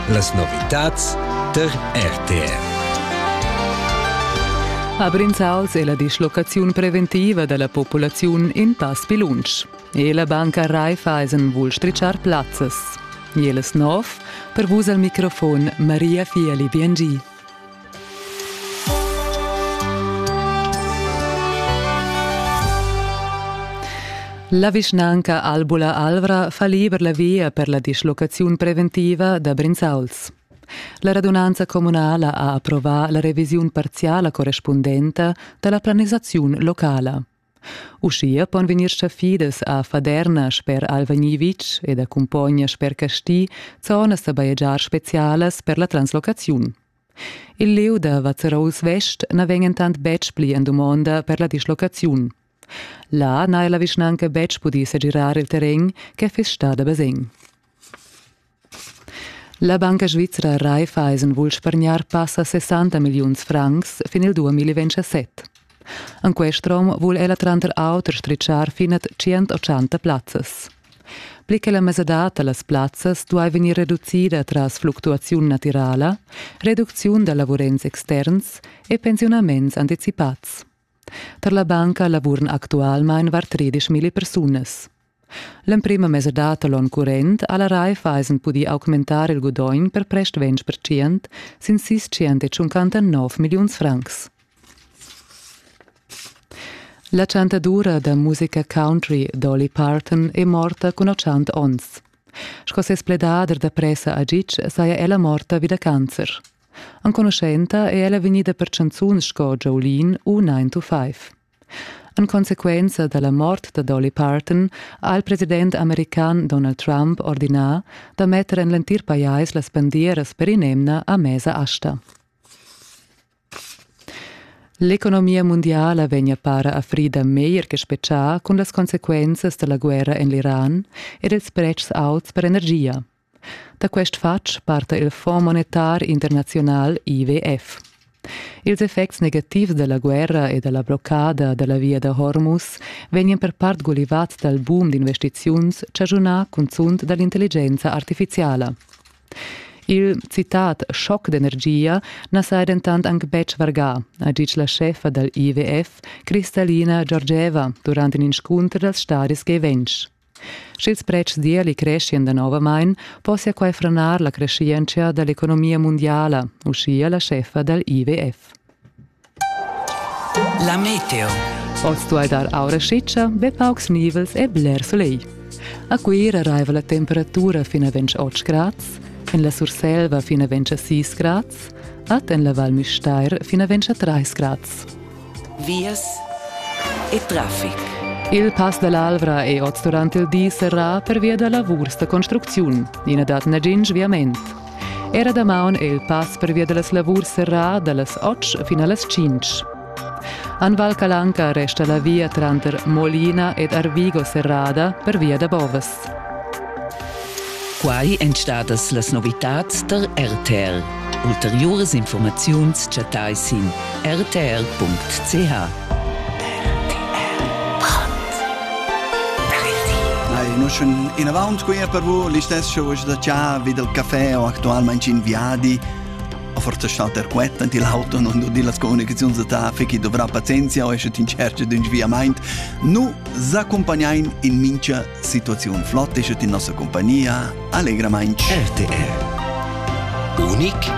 Las novitads tar RTR. A Brinzauls è la dislocaziun preventiva da la populaziun in pass pi lunsch. E la banca Raiffeisen vul strichar plazzas. Jeles nov, per vus al microfon Maria Fieli Biengi. La vischnanca Albula Alvra fa liber la via per la dislocaziun preventiva da Brinzauls. La radunanza communala ha approvà la revisiun parziala correspundenta da la planisaziun locala. Uschia pon vegnir chaffidas a Faderna sper Alva Nivitsch ed a Cumpogna sper Casti zonas da bajegiar spezialas per la translocaziun. Il lieu da Vazzarols Vest na vegn entant betg pli en dumonda per la dislocaziun. Là n'ha la vischnanca betg pudì segirar il terren che fiss stà da basegn. La banca svizra Raiffeisen vul spargnar passa 60 milliuns francs fin il 2027. En quest rom vul ella tranter auter stritschar finat 180 plazzas. Pli che la mesadad da las plazzas duai vegnir reducida tras fluctuaziun natirala, reducziun da lavurents externs e pensiunaments anticipads. Tar la banca lavuran actualmain var tredischmilli persunas. L'emprima mesadad da l'onn current ha la Raiffeisen pudì augmentar il gudogn per prest 20 percent sin sis centocinquantanov milliuns francs. La chantadura da musica country Dolly Parton è morta cun 80 onns. Sco ses pledader da pressa a Gitg saja ella morta vi da cancer. Enconuschenta è ella vegnida per chanzuns sco Jolene u 9 to 5. En consequenza da la mort da Dolly Parton ha il president american Donald Trump ordinà da metter en l'entir pajais las bandieras per in'emna a mesa asta. L'economia mundiala vegnia para a frida meglier che spetgà cun las consequenzas da la guerra en l'Iran ed ils pretschs auts per energia. Da quest fatg parta il Fonds monetar internaziunal IWF. Ils effects negativs dalla guerra e dalla bloccada dalla via da Hormuz vegnan per part gulivads dal boom d'investiziuns chaschunà cunzunt dall'intelligenza artificiala. Il citat schoc d'energia na saja dentant anc betg vargà, ha ditg la scheffa dal IWF, Kristalina Georgieva, durant in inscunter dals stadis G20. Sch'ils pretschs d'ieli creschian danovamain, possia quai franar la creschientscha da l'economia mundiala, uschia la scheffa dal IWF. La meteo. Oz duai dar aura schitscha, be paucs nivels e bler sulegl. A Cuira raiva la temperatura fin a 28 grads, en la Surselva fin a 26 grads, ad en la Val Müstair fin a 23 grads. vias e traffic. Il Pass dall'Alvra è oz durant il di serrà pervia da lavurs da construcziun. I na dat nagin sviament. Era damaun è il pass pervia da las lavurs serrà dallas 8 fin a las 5. An Val Calanca resta la via tranter Molina ed Arvigo serrada pervia da Bovas. Quai èn stadas las novitads tar RTL. Ulteriuras informaziuns chattai sin rtl.ch. No schon inavant qui per vous l'istessa voce da cià vi del caffè o actualmente in viadi a forza stat der quet ant il auto non do dir las comunicaziuns da ta fichi dovrà pazienzia o esce tin cerce d'un sviamaint nu S'accumpagnain in mincha situaziun flot e schütt in nossa compagnia allegramaing. RTR Unic